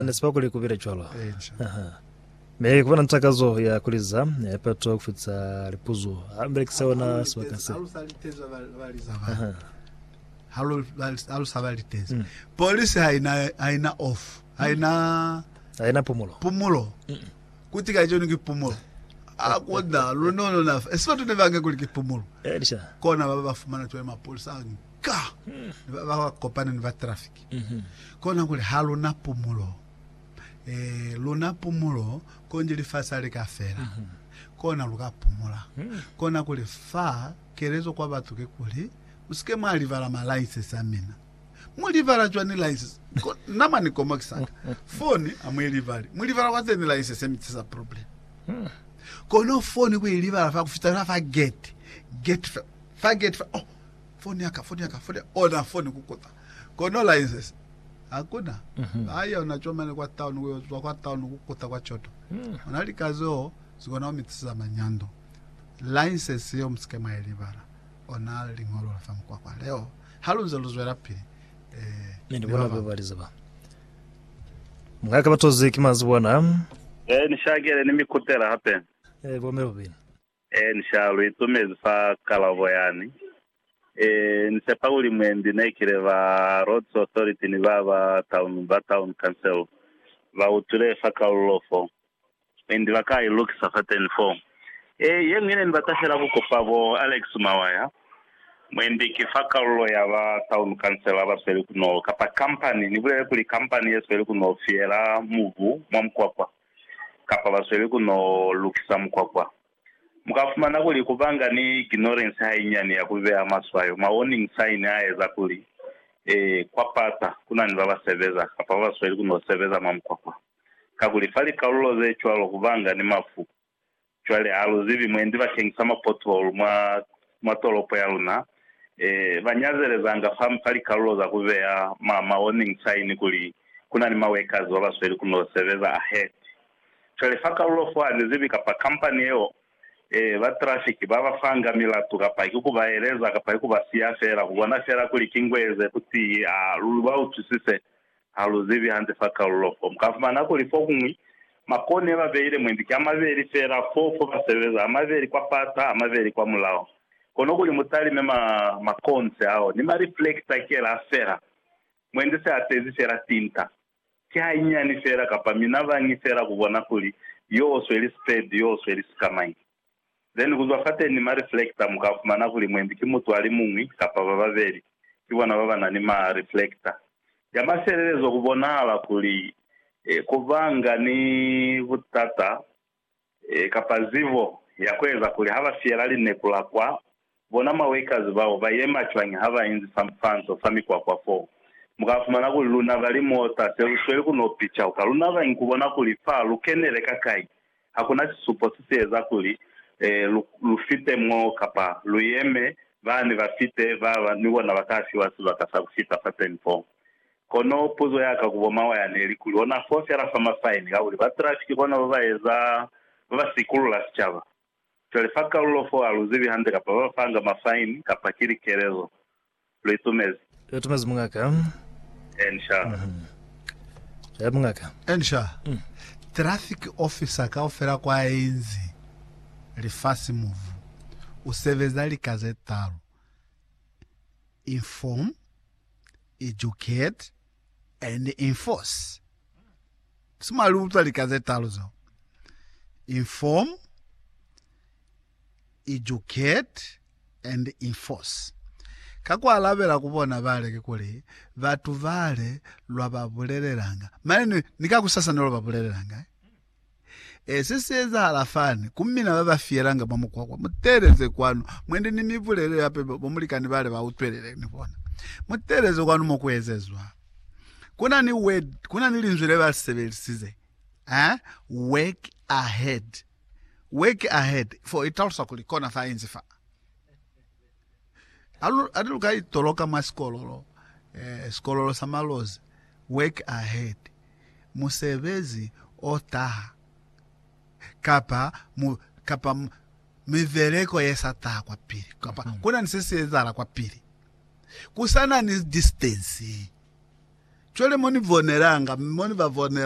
Ne si ba kuli ku bile cwalo. Aha. Mi ku ba na takazo ya ku liza lipato ku fita lipuzo. Ha lu belekisa ona sibaka se. Aha. Ha lu, ha lu sa ba litezi. Mm. Polisi ha ina, ha ina off. Ha mm. ina. Ha ina pumulo. Pumulo. Mm. Kuti ka joni ki pumulo. A kona, lu no no na. Esi batu ne ba nge kuli ki pumulo. Elisha. Eh, Kona ba ba fumana twa mapolisa. Ka. Mm. Ba ba kopane ni ba traffic. Kona kuli ha luna pumulo. Ee, luna pumulo, konji lifasi ha li ka fela, kona lu ka pumula. Kona kuli, fa kelezo kwa batu ki kuli, Musike mwa libala ma license a mina. Mu libala cwani license? Ko, na mwa ni komokisa ka. Foni, ha mu i libali. Mu libala kwa zeni license? Mi tisa problem. Kono foni ku i libala fa ku fita fela fa gate. Gate fa, fa gate fa, oh, foni ya ka, foni ya ka, foni ya, ona foni ku kuta. Kono Lainses hakuna ba yeo na comani kwa town ku yo zwa kwa town ku kuta kwa coto. Ona lika zeo zi kona ku mi tiseza manyando. Lainses yeo mu si ke mwa i libala. Ona liñolo la fa mukwakwa leo ha lu nze lu zwelapili ni ba bañwi. Mwa ka batozi ki mazuba ana. Ni shakele ni mi kutela hape. Bo me babeli. Ee, inca lu itumezi fa kalabo yani. Ee, ni sepa kuli mwendi ne kile ba Roads Authority ni ba ba town ba Town Council ba utwile fa kalulo fo. Mwendi ba ka ilukisa fateni fo. Ee, ye ñwi ne ni bata fela ku kupa bo Alex Mawaya, mwendi ki fa kalulo ya ba Town Council ba sweli ku no, kapa company, ni bulele kuli company ye sweli ku no fiyela mubu mwa mukwakwa. kapa ba sweli ku no lukisa mukwakwa. Mu ka fumana kuli ku banga ni ignorance hainyani ya ku beha maswayo, ma warning sign, a eza kuli, ee, kwa pata ku na ni ba ba sebeza kapa ba ba sweli ku no sebeza mwa mukwakwa. Kakuli fa likalulo ze cwalo ku banga ni mafu. Cwale, ha lu zibi mwendi ba kengisa ma pothole mwa, mwa tolopo ya luna. E, ba nyazelezanga fa, fa likalulo za ku beya ma, ma warning sign kuli ku na ni ma workers ba ba sweli ku no sebeza ahead. Cwale fa kalulo fo, ha ni zibi kapa kampani yeo, e, ba traffic ba ba fanga milatu, kapa ki ku ba eleza, kapa ki ku ba siya fela, ku bona fela kuli ki ngweze kutiyi, a lu, lu ba utwisise, Ha lu zibi hande fa kalulo fo, mu ka fumana kuli fokuñwi makoni ye ba beile mwendi ki a mabeli fela, fo, fo ba sebeza, a mabeli kwa fasa, a mabeli kwa mulaho. Kono kuli mu talime ma, makonse ao, ni ma reflector kela fela, mwendi se a tezi fela tinta. Ki hanyinyani fela, kapa minabañi fela ku bona kuli yo sweli speed, yo sweli sikamañi. Then kuzwa fateni ma reflector muka fumana kuli mwendi ki mutu alimuñwi kapa bababeli kibona babana ni ma reflector. Ya mafelelezo kubonahala kuli kubanga ni butata kapa zibo ya kueza kuli haba fiyela lineku la kwa Bona mawekazi bao ba yema cwañi ha ba inzi sampanto fa mikwakwa foo. Mu ka fumana kuli lunaba li moota se lu sweli ku no picauka. Lu nabangi ku bona kuli fa lu kenele ka kai. Ha ku na sisupo se si eza kuli lu, lu fite mo kapa lu yeme, ba ne ba fite, ba ba ni bona ba ka fiwa sibaka sa ku fita fateni foo. Kono puzo ya ka ku bo Mawaya ne li kuli, ona foo fela fa mafaini, kakuli ba trafiki bona ba ba eza, ba ba sikulula sicaba. Cwale fa kalulo fo, ha lu zibi hande kapa ba fanga ma fine kapa ki likelezo. Lu i tumezi? Lu i tumezi, mungaka. Enshar. Cwale, mungaka. Enshar, traffic officer kaufela kwa inzi lifasi muvu, u sebeza lika ze talu, inform, educate, and enforce. Si mwa li utwa lika ze talu zo? Inform, educate, and enforce. Ka ku alabela ku bona bale kikuli, batu bale lwa ba bulelelanga, mane ni ka kusasa ne lwa ba bulelelanga. E, se si ezahala fani. Ku mina ba ba fiyelanga mwa mukwakwa, mu teeleze kwanu. Mwendi ni mi bulelele hape ba mulikani bale ba utwelele, ni bona. Mu teeleze kwanu mo ku ezezwa. Ku na ni word, ku na ni linzwi le ba li sebelisize, ha, work ahead. Work ahead, for i talusa kuli kona fa inzi fa. Alu, ati luka itoloka mwa sikololo, eh, sikololo sa malozi, work ahead, musebezi o taha, kapa, mu, kapa mu, mibeleko ye sa taha kwa pili, kapa mm-hmm. kuna ni se si ezahala kwa pili, kusana ni distance. Cwale mo ni bonelanga, mo ni ba bonelanga,